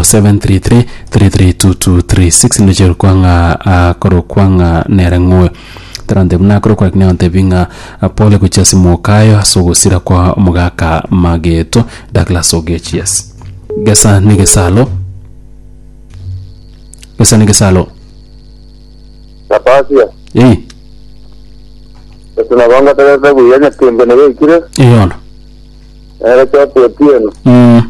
0733332236 ndoche rokwa ng'a akorokwa ng'a nere ng'oe tarante buna akorokwa lakini aontebi ng'a pole gochia ase mokayo ase ogosira kwa omogaka mageto Douglas Ogech yes gesa ne gesalo gesa ne gesalo Napasia, ei ese nabo ngotegerete buya nyakendi nigo ekire, eyono Nere Choki Otieno. Mm.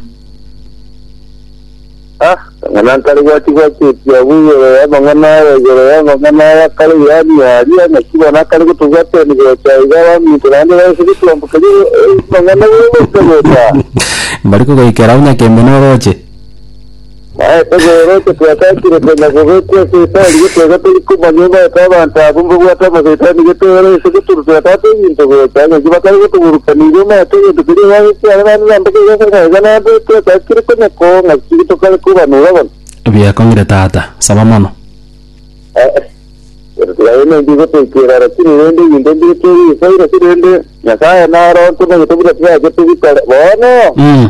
Ah, ng'ana nkare gwachi gwachi etiabu igoro ya mang'ana aya igoro ya mang'ana aya kare yani aria ng'aki bona kare gotugwa teni gocha iga baminto naende baise gotwambu keri mang'ana gocha gocha. Mbari kogoikera onye kembe noroche. Maete bworoche twatachire konya gobekwa ase etori getoga tori komanya omaete abanto abo mbabwate amasaitani getoera ase goturwa twatata ebinto gocha agachia batari gotoburukania igo omaete egento keria obagete are naende na mpaka igo ase ng'a iga naende twatachire konya koo ng'a ki tokare kobanora abanto. Biakong'ire tata, saba mono. Eh, gose tigayemeire ngotoikera lakini rende ebinto mbire tori isoi lakini rende Nyasaye naro ntomanyete buna tibachete bikore bono. Mm.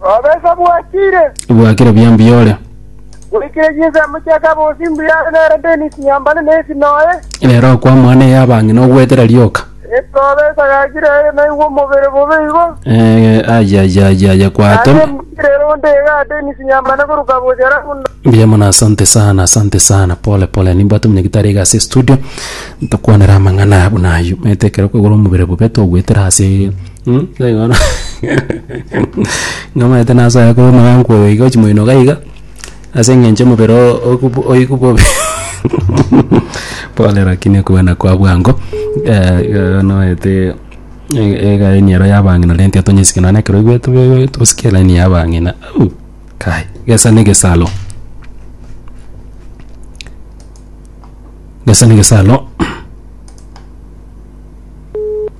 Obesa bwachire, Bwakire buya mbuya ore. bwaikire chinsemo chia kabosi mbuya ore nere Dennis Nyambane na esi noye. Rero okwama one ey'abang'e nogoetera rioka. Esi obesa gachire aye naigwe omobere bobe igo. Eh, aya aya aya aya kwate. Naye mbwire ero onde iga Dennis Nyambane korwa kabosi alafu ndo- Mbuya mono asante sana asante sana pole pole nimbwate omonyagitari iga ase studio ntokwanera amang'ana buna aywo maete ekero kwegora omobere bobe togoetera ase Nigo bono nomanyete nasoe korwa omogankwa oyo iga ochimoinoka iga ase eng'encho omobere oo okobu oigwe bobe pole lakini okobana kwa bwango iga noete elaini ero ya abang'ina renta iga tonyesike nonye na ekero oigwete tobe tosikie elaini ya abang'ina au kai gesa na egesaro gesa na egesaro.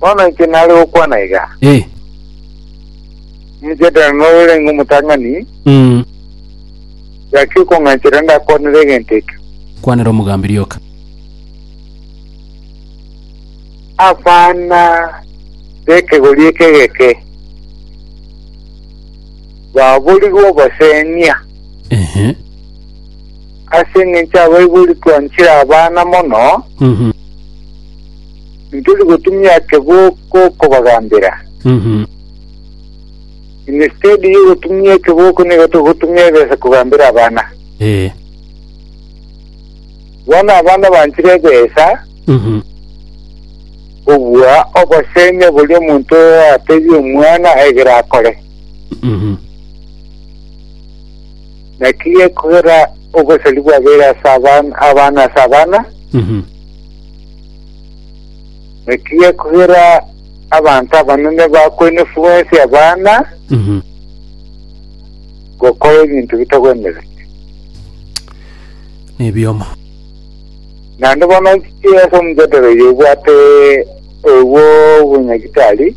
Bono inche nare gokwana iga, Eh. omochadera norenge omotang'ani, Mm. gaki okong'anchera ndakwanere egento ekio. Kwanera omogambi rioka. Abana b'ekegori eke egeke baborigwe obosenia, Ehe. Ase engencho abaibori twanchire abana mono, Mhm. intori gotumia ekeboko kobagambera. Mhm. Instead yo gotumia ekeboko nigo togotumia ebesa kogambera abana. Eh. Bono abana banchire ebesa Mhm. kobua obosemi bori omonto atebie omwana egere akore. Mhm. Naki ekogera oboseri bwabeire ase abana ase abana, naki ekogera abanto abanene bakoinefigwa ense y'abana gokora ebinto bitagwenereti. Nebiomo. Naende bono nchiche ase omojadala oyo obwate oyo bw'obonyagitari.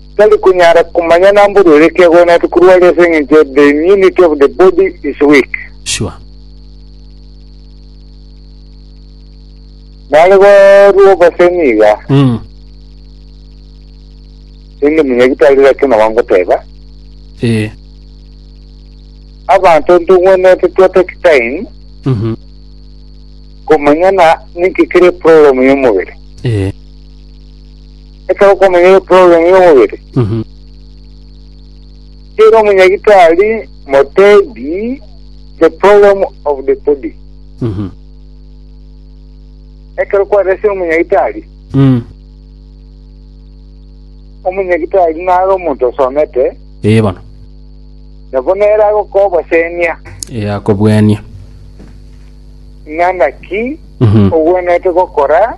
Tari konyara komanya namba oria ore kiagure na rituko aria ase engencho the immunity of the body is weak. Sure. Nare barue obosemi iga. Mm. Sindi munyagitari laki naba ngoteba. Eh. Abanto ntogwenerete twatake time. Mm -hmm. Komanyana ninki kere problem yomobere. Eh. ekero okomenyera eprogramu y'omobere. Mhm. Tiira omunyagitari motebi the program of the body. Mhm. Ekero kwarese omunyagitari, Mm. omunyagitari nare omonto osomete, Ee bono. nabo nere agokobosenia Ee akobwenia. ng'a naki Mhm. ogwenerete gokora